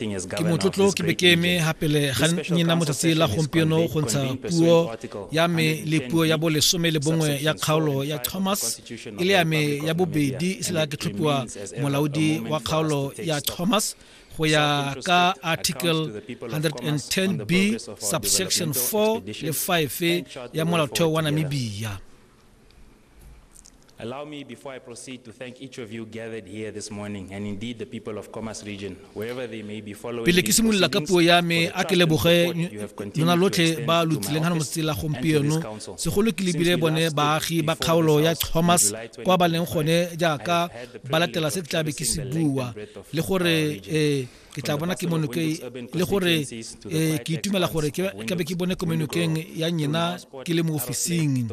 Ke motlotlo ke be ke eme gapele ga nyena motsatsi la gompieno go ntsha puo ya me le puo ya bolesome le bongwe ya kgaolo ya Thomas e le ya me ya bobedi e sela ke tlhophiwa molaodi wa kgaolo ya Thomas go ya ka article 110b subsection 4 le 5 ya molaotheo wa namibia Allow me, before I proceed, to thank each of you gathered here this morning, and indeed the people of Khomas region, wherever they may be following pele ke simolola ka puo ya me a ke leboge lona lotlhe ba lo tsileng ga motse la gompieno segolo ke lebile bone baagi ba kgaolo ya thomas kwa ba leng gone jaaka ba latela se ke tlabe ke se bua le gore um ke tla bona ke monoke le gore eh, ke itumela gore ke be ke bone ko menokeng ya nyena ke le mo ofising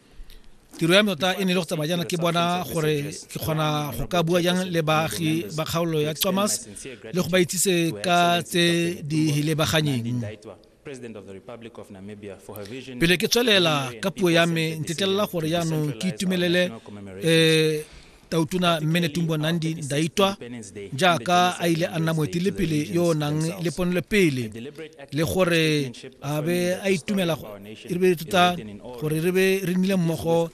tiro ya me tota e ne e le go tsamaya jaana ke bona gore ke kgona go ka bua jang le baagi ba kgaolo ya thomas le go ba itsise ka tse di lebaganyeng pele ke tswelela ka puo ya me ntetelela gore jaanong ke itumelele um tautona mmene tumbo nandi ndaitwa jaaka a ile a nna moetelepele yo o nang le ponelopele le gore a be a itumela re be tota gore re be re nnile mmogo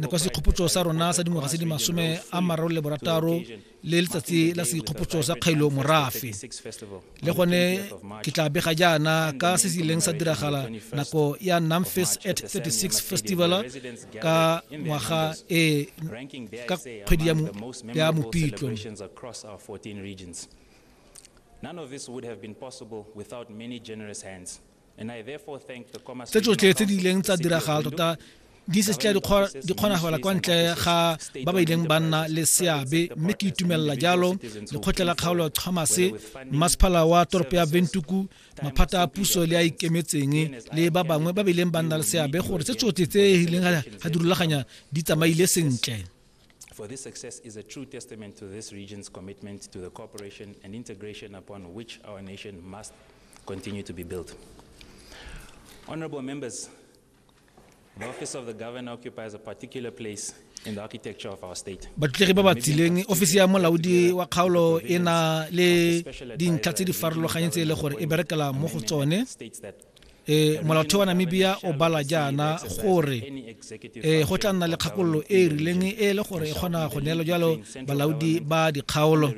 kwa sekgopotso sa rona sa dingwaga tse di masome a mararo le borataro le letsatsi la sekgopotso sa kgailo morafe le gone ke tla bega jaana ka se se ileng sa diragala nako ya namfis at 36 festival ka ngwaga e ka kgwedi ya mopitlo None of this would have been possible without many generous hands. tse tsotlhe tse di ileng tsa diragala tota di se tša di kgonagala kwa ntle ga ba ba ileng ba nna le seabe mme ke itumelela jalo lekgotlha la kgaolo thomas masephala wa toropo ya bentuku maphata a puso le a ikemetseng le ba bangwe ba ba ileng ba nna le seabe gore tse tsotlhe tse e ileng ga di rulaganya di tsamaile sentle for this success is a true testament to this region's commitment to the cooperation and integration upon which our nation must continue to be built. Honorable members, the office of the governor occupies a particular place in the architecture of our state. batlegi ba ba tsileng ofisi ya molaodi wa kgaolo e na le dintlha tse di farologanyeng tse e le gore e berekela mo go tsone states that e molaotheo wa namibia o bala jaana gore e go tla nna le kgakololo e e rileng e e le gore e kgona go neelo jalo balaodi ba dikgaolo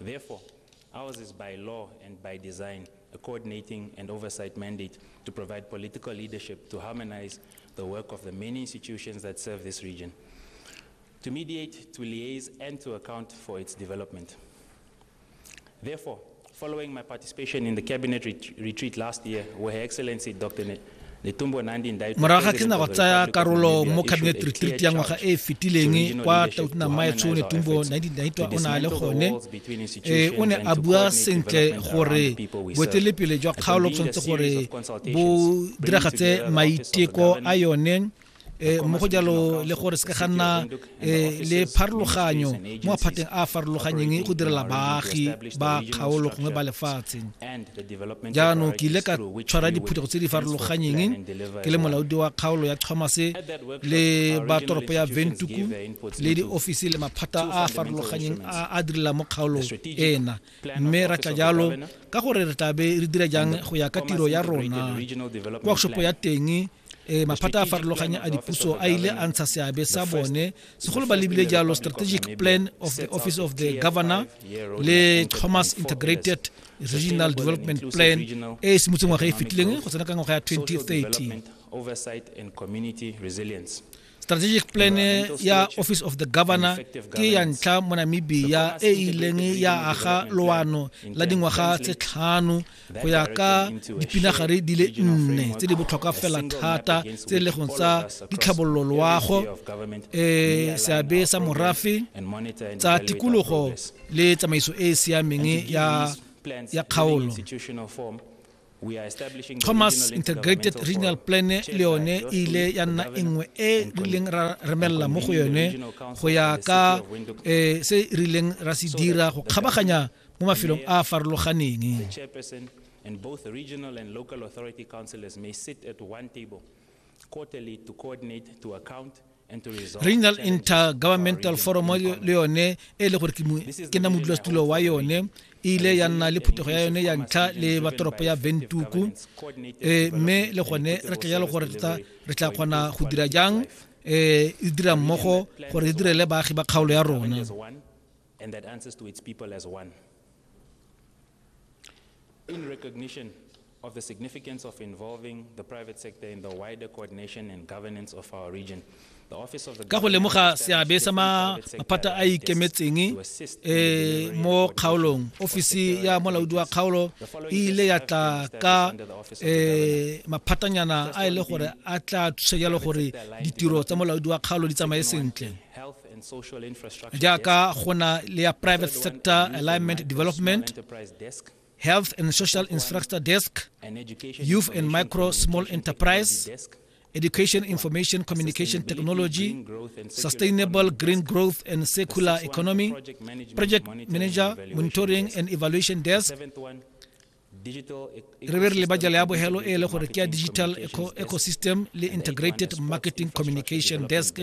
Therefore, ours is by law and by design a coordinating and oversight mandate to provide political leadership to harmonize the work of the many institutions that serve this region, to mediate, to liaise, and to account for its development. Therefore, following my participation in the cabinet ret retreat last year, where Her Excellency Dr. Ne morago ga ke na go tsaya karolo mo cabinet retreat ya ngwaga e e fetileng kwa tautna maetsho o ne tumbo 1992 o ne a le gone um o ne a bua sentle gore boetelepele jwa kgaolo tshwanetse gore bo diragatse maiteko a yone eh, mo go jalo le gore se ka ga nna eh, le pharologanyo mo maphateng a a farologanyeng go direla baagi ba kgaolo gongwe ba lefatshe jaanong ke ile ka tshwara diphuthego tse di farologanyeng ke le molaodi wa kgaolo ya chomase le ba toropo ya ventuku le diofisi le maphata a a farologanyeng a a direla mo kgaolong ena mme ra tla jalo ka gore re tlabe re dira jang go ya ka tiro ya rona workshop ya teng e maphata a farologanya a dipuso a ile a ntsha seabe sa bone segolo ba lebile jalo strategic plan of the office of the governor le thomas integrated regional development plan e e simotse ngwaga e fetileng go tsena ka ngwaga ya 2030 strategic plan ya office of the governor ke ya ntlha mo namibia e e ileng ya aga loano la dingwaga tse tlhano go ya ka dipinagare di le nne tse di botlhokwa fela thata tse e le go tsa ditlhabololo loago um seabe sa morafe tsa tikologo le tsamaiso e e siameng ya kgaolo thomas integrated regional plan le yone e ile ya nna e nngwe e rileng ra remelela mo go yone go ya ka eh, se e rileng ra se dira go kgabaganya mo mafelong a a farologaneng and both regional and local authority councillors may sit at one table quarterly to coordinate to account regional intergovernmental forum le yone e le gore ke nna modulasetulo wa yone e ile ya nna le phuthego ya yone ya ntlha le batoropo ya ventuku eh, mme le gone re tla jalo gore re tla kgona go dira jang um e dira mmogo gore e direle baagi ba kgaolo ya rona of the significance of involving the private sector in the wider coordination and governance of our region. The office of the ka go lemoga seabe sa maphata a ikemetseng eh, mo kgaolong ofisi ya molaodi wa kgaolo e ile ya tla ka eh, maphatanyana a e le gore a tla thusa jalo gore ditiro tsa molaodi wa kgaolo di tsamaye sentle jaaka go na le ya private sector alignment development Health and Social Infrastructure Desk, Youth and Micro Small Enterprise, Education Information Communication Technology, Sustainable Green Growth and Circular Economy, Project Manager, Monitoring and Evaluation Desk, re be re leba jalo ya bogelo e le gore ke ya digital ecosystem le integrated marketing communication desk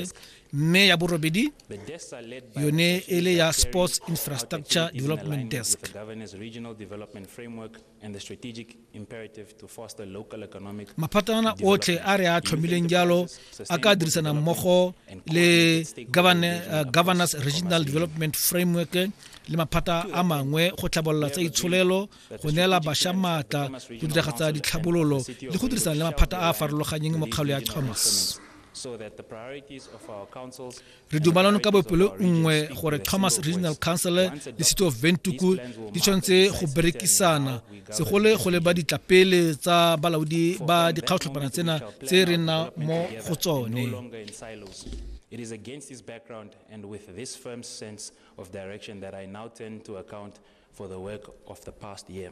mme ya borobedi yone e le ya sports infrastructure development desk maphatana otlhe a re a tlhomileng jalo a ka dirisana mmogo le uh, governance regional development framework le maphata a mangwe go tlhabolola tsa itsholelo go neela bašwa maatla go diragatsa ditlhabololo le go dirisana le maphata a a farologanyeng mokgalo ya thomas re dumalano ka bopelo nngwe gore thomas regional council le city of ventuku di tshwanetse go berekisana segole go leba ditlapele tsa balaodi ba dikgaotlhopana tsena tse re nna mo go tsone It is against this background and with this firm sense of direction that I now turn to account for the work of the past year.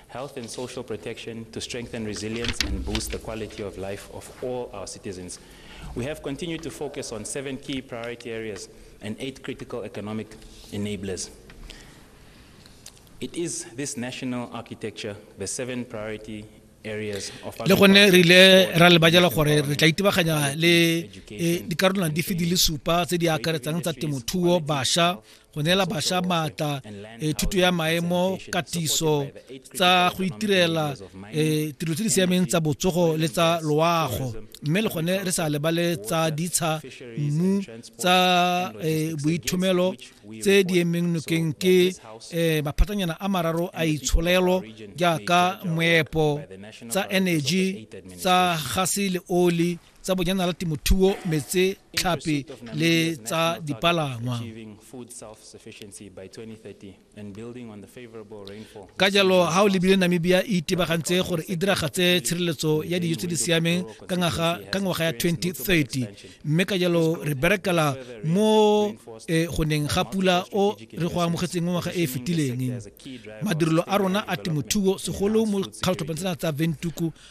health and social protection to strengthen resilience and boost the quality of life of all our citizens. We have continued to focus on seven key priority areas and eight critical economic enablers. It is this national architecture, the seven priority le gone re ile ra lebajela gore re tla itebaganya le e, dikarolwana dife di le supa tse di akaretsang tsa temothuo basha go neela bašwa maatla e thuto ya maemo katiso tsa go itirela e tiro tse di siameng tsa botsogo le tsa loago mme le gone re sa lebale tsa ditsha mmu tsa e, boithomelo tse di emeng nokeng ke e, maphatanyana a mararo a itsholelo jaaka moepo tsa energy tsa gase le oli tsa bojanala temothuo metse tlhape le tsa dipalangwa ka jalo ga o lebile namibia e itebagantse gore e diragatse tshireletso ya dijo tse di siameng ka ngwaga ya 2030 mme ka jalo re berekela mo eh, go neng ga pula o re go amogetseng mo ngwaga e e fetileng madirelo a rona a temothuo segolo mo kgatlhotlhopeng tsena tsa ventuku